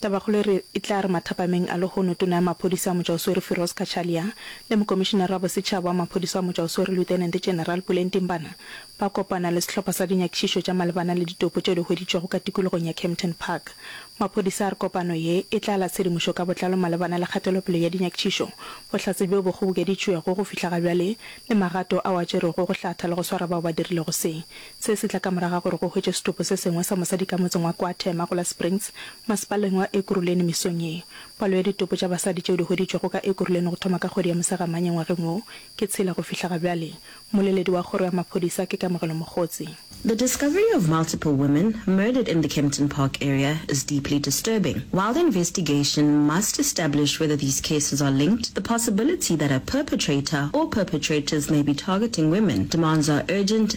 Tabakgolo e re e tla re mathapameng a lehono Tona ya Maphodisa Motšwaoswere Firoz Cachalia le Mokomišenara wa Bosetšhaba wa Maphodisa wa Motšwaoswere Lieutenant General Puleng Timbana ba kopana le sehlopha sa dinyakišišo tša malebana le ditopo tše di hweditšwego ka tikologong ya Kempton Park. Maphodisa a re kopano ye e tla la tshedimošo ka botlalo malebana le kgatelopele ya dinyakišišo, bohlatse bjo bo kgobokeditšwego go fihla ga bjale le magato ao a tšerwego go hlatha le go swara bao ba dirilego se. Se se tla ka morago ga gore go hwetšwe setopo se sengwe sa mosadi ka motseng wa Kwa Thema go la Springs, masepaleng wa Ekurhuleni mesong ye. Palo ya ditopo tša basadi tšeo di hweditšwego ka Ekurhuleni go thoma ka kgwedi ya Mosegamanye ngwageng wo ke tshela go fihla ga bjale. Mmoleledi wa kgoro ya maphodisa ke Kamogelo Mogotsi. The discovery of multiple women murdered in the Kempton Park area is deeply disturbing. While the investigation must establish whether these cases are linked, the possibility that a perpetrator or perpetrators may be targeting women demands our urgent,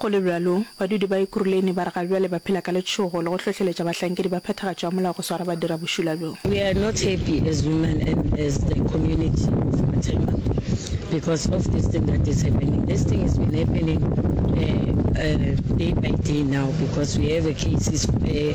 Go le bjalo, badudi ba Ekuruleni ba re ga bjale ba phela ka letšhogo le go hlohleletša bahlankedi ba phethagatšo ya molao go swara badirabošula bjo. We are not happy as women and as the community of Mathema because of this thing that is happening. This thing has been happening day by day now because we have cases where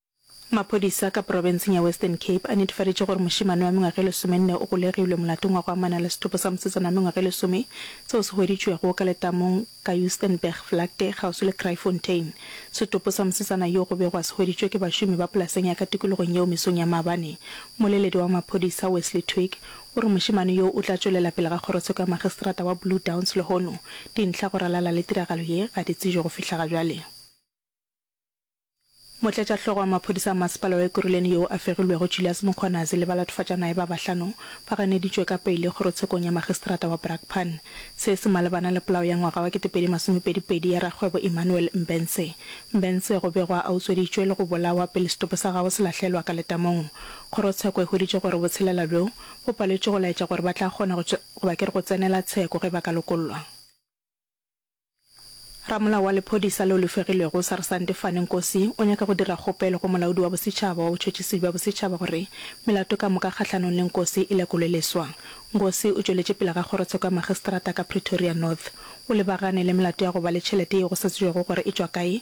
Maphodisa ka porofenseng ya Western Cape a netefaditše gore mošemane wa mengwaga e lesomenne o golegilwe molatong wa go amana le setopo sa mosetsana wa mengwaga e lesome seo se hweditšwego ka letamong ka Joostenbergvlakte kgauswi le Kraaifontein. Setopo sa mosetsana yo go be gwa se hweditšwe ke bašomi ba polaseng ya ka tikologong yeo mesong ya maabane. Mmoleledi wa maphodisa Wesley Twigg o re mošemane yo o tla tšwelela pele ga kgorotsheko ya magistrata wa Blue Downs lehono dintlha go ralala le tiragalo ye ga di tsejwe go fihla ga bjale. Motlatšahlogo wa maphodisa a Masepala wa Ekurhuleni yo a fegilwego Julias Mkhwanazi le balatofadjanaye ba bahlano ba ganeditšwe ka peile kgorotshekong ya Magistrata wa Brakpan. Se se malebana le polao ya ngwaga wa kete pedi masome pedi pedi ya rakgwebo Emmanuel Mbense. Mbense go begwa a utsweditšwe le go bolawa pele setopo sa gagwe se lahlelwa ka letamong. Kgorotsheko e hweditše gore botshelela bjo bo paletšwe go laetša gore ba tla kgona go, goba ke re go tsenela tsheko ge ba ka lokollwa. Ramolao wa lephodisa leo le fegilwego, Sarsante Fane Nkosi, o nyaka go dira kgopelo go Molaodi wa Bosetšhaba wa Botšhotšhisi bja Bosetšhaba gore melato ka moka kgahlanong le Nkosi e lekolwe leswa. Nkosi o tšweletše pele ga kgorotsheko ya magistrata ka Pretoria North. O lebagane le melato ya go ba le tšhelete yeo go sa tsebjego gore e tšwa kae,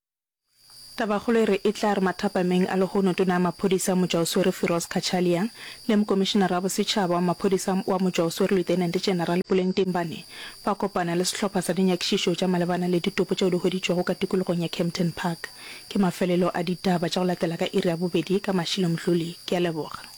Tabakgolo e re e tla re mathapameng a lehono Tona ya Maphodisa Motšwaoswere Firoz Cachalia le Mokomišenara wa Bosetšhaba wa Maphodisa wa Motšwaoswere Lieutenant General Puleng Timbane ba kopana le sehlopha sa dinyakišišo tša malebana le ditopo tšeo di hweditšwego ka tikologong ya Kempton Park. Ke mafelelo a ditaba tša go latela ka iri ya bobedi ka mašiloMdluli. Ke a leboga.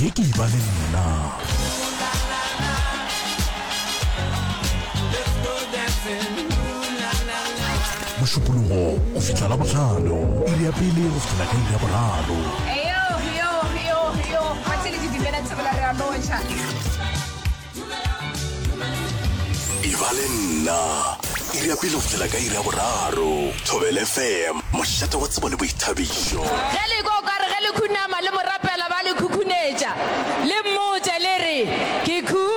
ye ke e ba le nna mošupologo go fihla la botlhano iri ya pele go fihla ka iri ya boraro Eyo, yo, yo, yo. Ba tšere di dimela tse bola re a lotšha. e ba le nna iri ya pele go fihla ka iri ya boraro thobele fm mošate wa tsebo le boithabišo ge le kwa o ka re ge le khunama le morapela ba le khukhunetša le mmotse le re ke khu